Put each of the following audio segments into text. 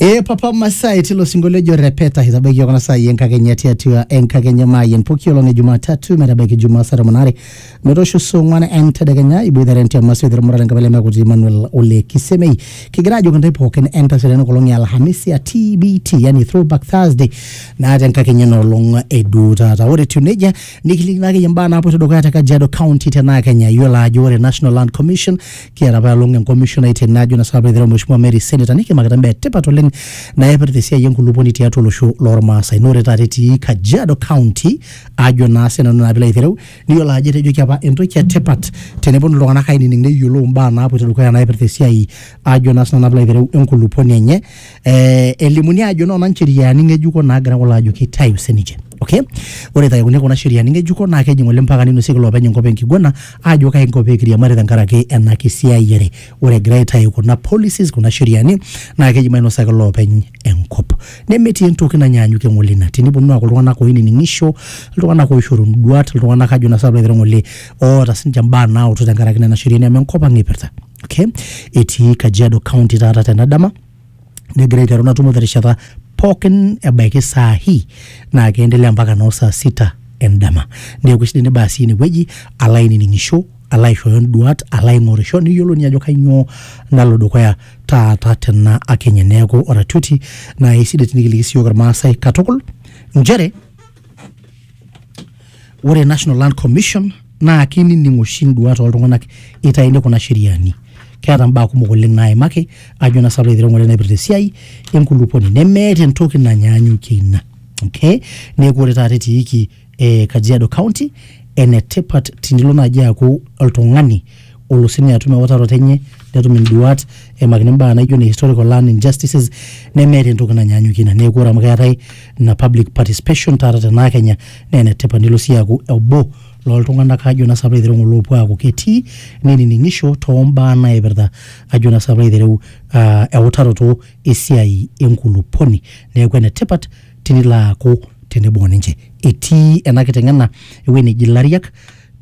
ee papa masai tilo sinkolio ojo repeta eitabaiki yiok kuna saai enkakenya tiatua enkakenya maayeng poki olong e jumatatu metabaiki jumaa saa tomon are metoosho saa ong'uan entedekenya iboitare entiama soitero murata enkabila emekuti emmanuel ole kisemei kigira ajoki ntae pookin entasho tena kolong e alhamisi a tbt yani throwback thursday naa tenkakenya ena olong eduo taata ore etiu nejia nikilikino akeyie imbaa naapoito dukuya te kajiado county tenaa kenya iyiolo ajo ore national land commission Kiata apa elong enkomisho naitene ajo na sinanu peitereu Mheshimiwa Mary Senator nikimakita imbaa etipat oleng naipirta esiai enkulupuoni tiatua olosho lormaasai. Naa ore taata etii Kajiado County ajo naa sinanu naa piilo aitereu niyiolo ajo etejoki apa entoki etipat teneponu iltung'anak ainining neyiolou imbaa naapuoito dukuya naipirta esiai ajo naa sinanu naa piilo aitereu enkulupuoni enye eh, elimuni ajo noona ncheriani ng'ejuko naagira kulo ajo kitayu sininche okay ore itayuni kuna sheriani ng'ejuko naa kejing oleng mpaka ninosieki loopeny enkop enkiguana aajo kae nkop peekiriamari tenkaraki ena kisiayiare ore egira aitayu kuna policies kuna sheriani naa keji mainosaki loopeny enkop nemetii entoki nanyaanyukie ng'ole ina tiniponu aaku iltung'anak oinining'isho iltung'anak oishoru induat iltung'anak ajo naa sinanu piilo aitereu ng'ole oota sininche imbaa naautu tenkaraki nena sheriani amu enkop ang ipirta okay. etii Kajiado County taata tena dama negira aiteru ina tumo terishata pookin ebaiki saa hii naa keendelea mpaka noo saa sita endama neeku sidai nibaa sii inewueji alo ainining'isho alo aishooyo nduat alo aing'orisho niyiolou ninye ajo kainyoo nalo dukuya taata tena akenye neeku oratioti naa isidai tinikiliki siyiok irmaasai katukul nchere ore national land commission naa kinining oshi induat oltung'anak itaini kuna sheriani keeta mbaa kumok oleng naimaki ajo naa salo aitereu ng'ole naipirta esiai enkulupuoni nemeeta entoki nanyaanyukie ina okay neeku ore taata etiiki eh, kajiado county enetipat tinilo naaji aaku oltung'ani olo sine atum ewutaroto enye netum induat eimakini imbaa naijo ne historical land injustices nemeeta entoki nanyaanyukie ina neeku ore amu keetae ina public participation taata tenaa kenya naa enetipat nilo sii aaku obo loltung'anak ajo naa sapa aitereu ng'ole oopuo aaku ketii nenining'isho tombaa naipirta ajo naa sapa aitereu uh, eutaroto esiai enkulupuoni neeku enetipat tinilo aaku tenebo ninche etii ena kiteng'ena ewueji neji ilariak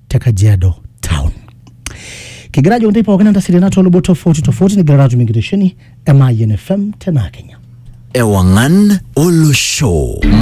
te kajiado town kigira ajo ntae pookin entasiri natii luboto tofauti tofauti nigira atum enkitesheni e mayian fm tenaa kenya Ewangan Olosho.